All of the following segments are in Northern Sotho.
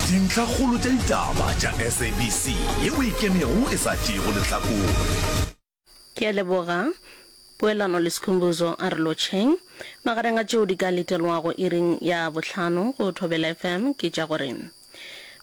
Dintlhakgolo tša ditaba tša SABC ye o e kemego e sa tšeego lehlakore. Ke a leboga. Poelano le Sikhumbuzo a re lotšheng. Magareng a tšeo di ka letelwago iring ya bohlano go Thobela FM ke tša gore,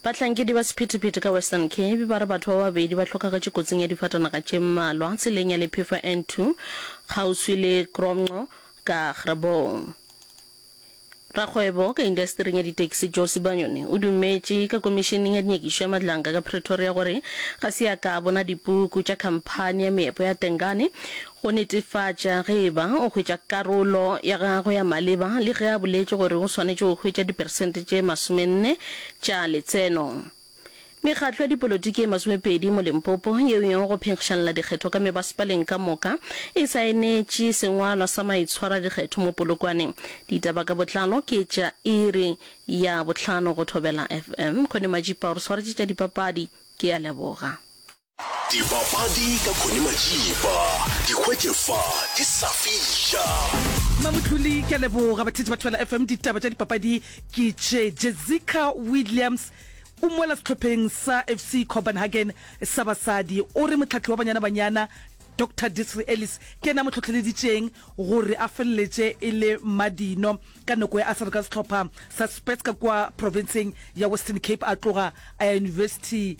Bahlankedi ba sephethephethe ka Western Cape ba re batho ba babedi ba hlokagetše kotsing ya difatanaga tše mmalwa tseleng ya Lephefo N2 kgauswi le Kromnqo ka Grebou. Rakgwebo ka indasetering ya ditaxi Joe Sibanyoni o dumetše ka Komišeneng ya Dinyakišo ya Madlanka ka Pretoria gore ga se a ka a bona dipuku tša khamphani ya meepo ya Tengane go netefatša ge e ba o hwetša karolo ya gagwe ya maleba le ge a boletše gore o swanetše go hwetša diperesente tše masomenne tša letseno. Mekgatlo ya dipolotiki e masomepedi mo Limpopo yeo e yego go phenkgišanela dikgetho ka mebasepaleng ka moka e saenetše sengwalwa sa maitshwaradikgetho mo Polokwaneng. Ditaba ka botlalo ke tša iri ya bohlano go Thobela FM. Kgonemadjipa o re swaretše tša dipapadi. Ke a leboga. Dibapadi ka Connie Majiba, di hwetše fa di sa fiša. Mamotloli ke a leboga batheetši ba Thobela FM. Ditaba tša dipapadi ke tše, Jessica Williams o mola sehlopheng sa FC Copenhagen sa basadi. O re mohlahli wa Banyana Banyana, Doctor Desiree Ellis ke yena a mo hlohleleditšeng gore a feleletše e le madino ka nako ya a sa le ka sehlopha sa Spurs ka kua profenseng ya Western Cape a tloga a ya yunibesithi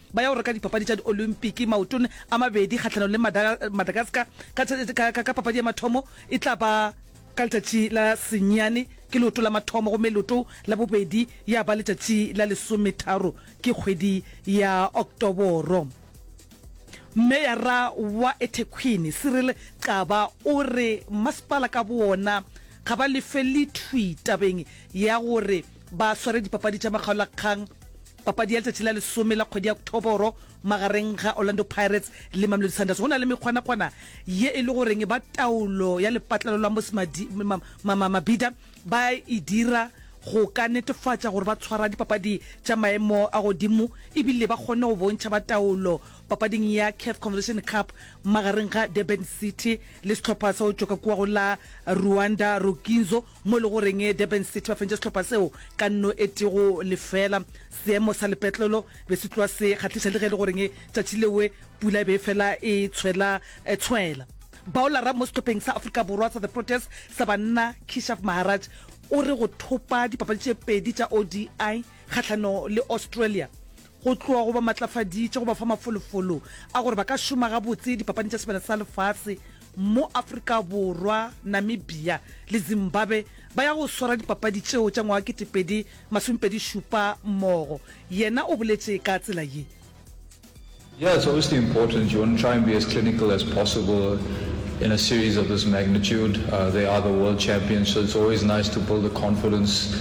Ba ya go reka dipapadi tša di-Olympiki maotone a mabedi kgahlanong le Madagascar ka papadi ya mathomo. E tla ba ka letšatši la senyane, ke leoto la mathomo, gomme leoto la bobedi ya ba letšatši la lesometharo, ke kgwedi ya Oktoboro. Meyara wa eThekwhini, Cyril Xaba o re masepala ka bowona ga ba lefe lethwi tabeng ya gore ba sware dipapadi tša makgaolakgang. Papadi ya letšatši la lesome la kgwedi ya Oktoboro magareng ga Orlando Pirates le Mamelodi Sundowns. Go na le mekgwanakgwana ye e le goreng ba taolo ya lepatlelo la Mmusi Mabhida ba e dira go ka netefatša gore ba tshwara dipapadi tša maemo a godimo ebile ba kgonne go bontšha ba taolo papading ya Caf Confederation Cup magareng ga Durban City le sehlopha sa go tšwa ka kua go la Rwanda, Rukinzo. mo e le goreng Durban City ba fentše sehlopha seo ka nno e tego lefela. Seemo sa lepetlelo be se tloa se kgahliša le ge e le goreng tšatši lewe pula e be e fela e tshwela e tshwela. Baolara mo sehlopheng sa Afrika Borwa sa The Proteas sa banna, Keshav Maharaj o re go thopa dipapadi tše pedi tša ODI kgahlano le Australia go tloga go ba matlafaditše go ba fa mafolofolo a gore ba ka šoma gabotse Dipapading tša Sebele sa Lefase mo Afrika Borwa, Namibia le Zimbabwe ba ya go swara dipapadi tšeo tša ngwaga kete pedi masome pedi šupa mmogo. Yena o boletše ka tsela ye. Yeah, it's obviously important. You want to try and be as clinical as possible in a series of this magnitude. They are the world champions, so it's always nice to build the confidence.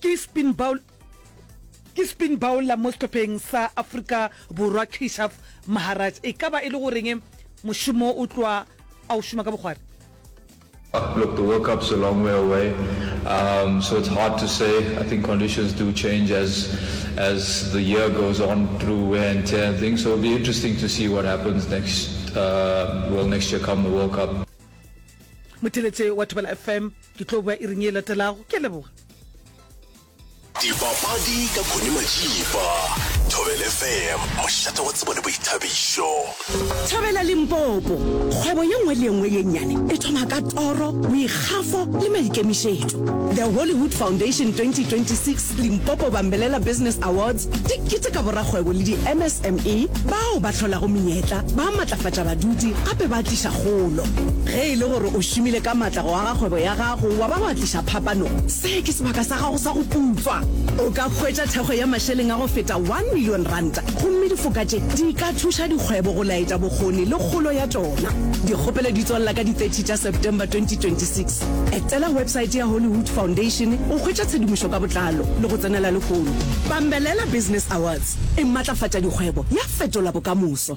Ke spin bowl Ke spin bowler mo sehlopheng sa Afrika Borwa Keshav Maharaj. E ka ba e le goreng mošomo o tloa a o šoma ka bokgwari? Look, the World Cup's a long way away, um, so it's hard to say. I think conditions do change as as the year goes on through wear and tear and things. So it'll be interesting to see what happens next, uh, well, next year come the World Cup. Motheletše wa Thobela FM. Ke tlo boa iring e latelago. Ke a leboga. Dipapadi ka Connie Majiba, Thobel FM, mošate wa tsebo le boithabišo. Thobela Limpopo. Kgwebo ye nngwe le ye nngwe ye nnyane e thoma ka toro, boikgafo le maikemišetšo. The Hollywood Foundation 2026 Limpopo Bambelela Business Awards di keteka borakgwebo le di-MSME bao ba hlolago menyetla, ba netefatša badudi gape ba tliša kgolo. Ge e le gore o šomile ka matla go aga kgwebo ya gago wa ba wa tliša phapano, se ke sebaka sa gago sa go putswa. O ka hwetša thekgo ya mašeleng a go feta one million ranta gomme difoka tše di ka thuša dikgwebo go laetša bokgoni le kgolo ya tšona. Dikgopelo di tswalela ka di 30 tša September 2026. Etela websaete ya Hollywood Foundation go hwetša tshedimošo ka botlalo le go tsenela lehono. Bambelela Business Awards e matlafatša dikgwebo ya fetola bokamoso.